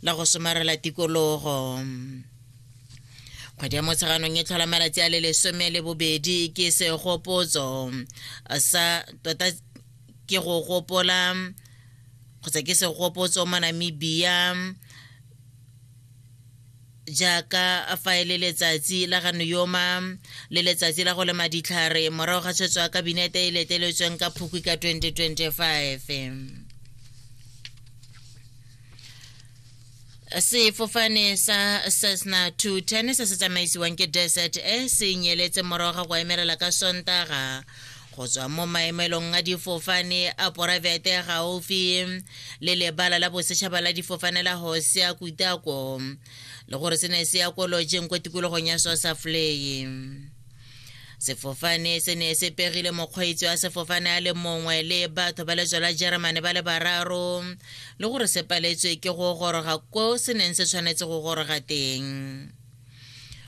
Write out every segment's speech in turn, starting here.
la go somarela tikologo kgwedi ya motsheganong e tlhola malatsi a le lesome le bobedi ke segopotso sa tota ke go gopola kgotsa ke segopotso mo namibia jaaka fa e le letsatsi la ga noyoma le letsatsi la go lema ditlhare morago ga tshwetso ya kabinete e leteletsweng ka phukwi ka 2025 sefofane sa cessna 210 se se tsamaisiwang ke desert e se nyeletse morago ga go emelela ka sontaga go tswa mo maemelong a difofane a poraefete gaufi le lebala la bosetšhaba la difofane la hosea kutako le gore se ne se ya ko lojeng ko tikologong ya sosafleye sefofane se ne se pegile mokgweetsi wa sefofane a le mongwe le batho ba letswa la germany ba le bararo le gore se paletswe ke go goroga ko se neng se tshwanetse go goroga teng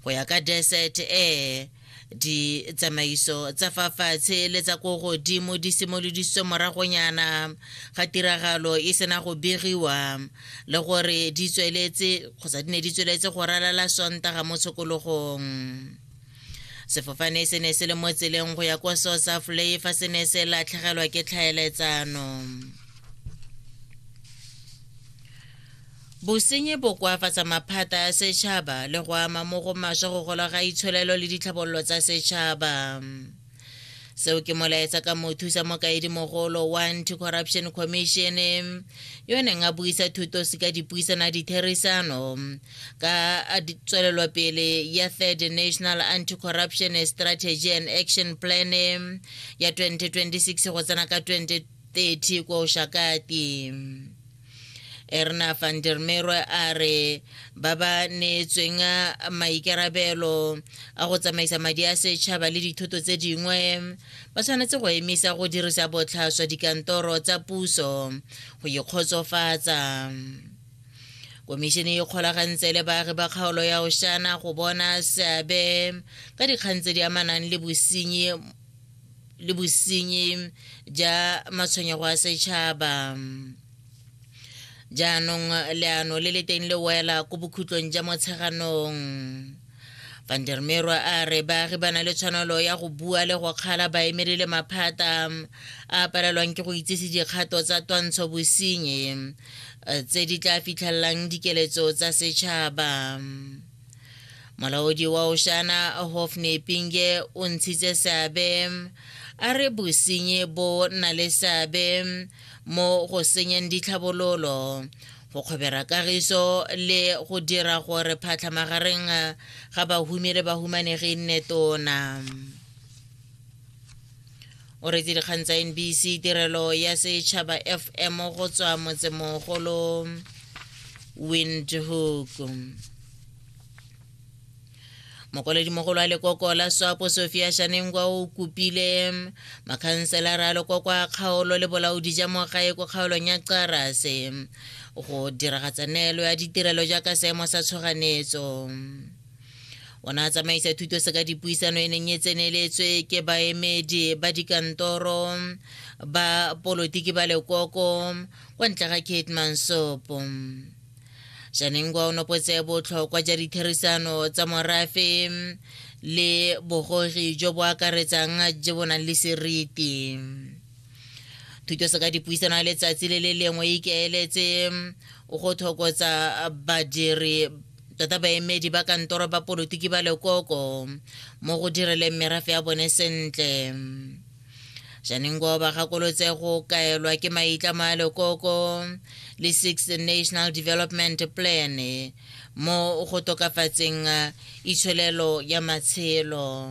go ya ka desert air ditsamaiso tsa fa fatshe le tsa ko godimo di simolodisitswe moragonyana ga tiragalo e sena go begiwa le gore di tsweletse kgotsa di ne di tsweletse go ralala sontaga mo tshokologong sefofane se ne se le mo tseleng go ya kwa south africa fa se ne se latlhegelwa ke tlhaeletsano Bosenyi bo koafatsa maphata ya setšhaba le go ama mo go maswa go gola ga itsholelo le ditlhabololo tsa setšhaba. Seo ke molaetsa ka mothusa mokaedimogolo wa Anti-Corruption Commission yo neng a buisa thutosi ka dipuisana ditherisano ka tswelelopele ya Third National Anti-Corruption Strategy and Action Plan ya 2026 go tsena ka 2030 kwa Oshakati. erna van der merwe a re ba ba neetsweng maikarabelo a go tsamaisa madi a setšhaba le dithoto tse dingwe ba tshwanetse go emisa go dirisa botlhaswa dikantoro tsa puso go ikgotsofatsa komišene e kgolagantse le baagi ba kgaolo ya oshana go bona seabe ka dikgang tse di amanang le bosenyi le bosenyi ja matshwenyego a setšhaba jaanong leano le le teng le wela ko bokhutlong ja motsheganong vandermerwa a re baagi ba na le tshwanelo ya go bua le go kgala baemedi le maphata a palelwang ke go itsise dikgato tsa twantsho bosenyi eh, tse di tla fitlhelelang dikeletso tsa setšhaba molaodi wa oshana hofne pinge o ntshitse seabe a re bosenyi bo na le seabe mo go senyeng ditlhabololo go kgobera kagiso le go dira gore phatlha magareng ga bahumi le bahumanegi e nne tona o retse dikgang tsa nbc tirelo ya setšhaba fm go tswa motsemogolo windhoek mokoledimogolo a lekoko la swapo sofia shanengwa o kopile makhanselara a lekoko a kgaolo le bolaodi ja mogae ko kgaolong ya qarase go diragatsa neelo ya ditirelo jaaka seemo sa tshoganetso o ne a tsamaisa thuto se ka dipuisano e neng e tseneletswe ke baemedi ba dikantoro ba polotiki ba lekoko kwa ntle ga kate mansopo janengwa o nopotse botlhokwa ja ditherisano tsa morafe le bogogi jo bo akaretsang jo bo nang le seriti thuto se ka dipuisano ya letsatsi le le lengwe ikaeletse go thokotsa badiri tota baemedi ba kantoro ba polotiki ba lekoko mo go direleng merafe ya bone sentle janengo ba gakolotse go kaelwa ke maitlamo a lekoko le six national development plan mo go tokafatseng itsholelo ya matshelo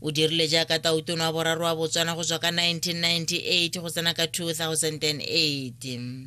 o dirile jaaka tautono wa boraro wa botswana go tswa ka 1998 go tsena ka 2008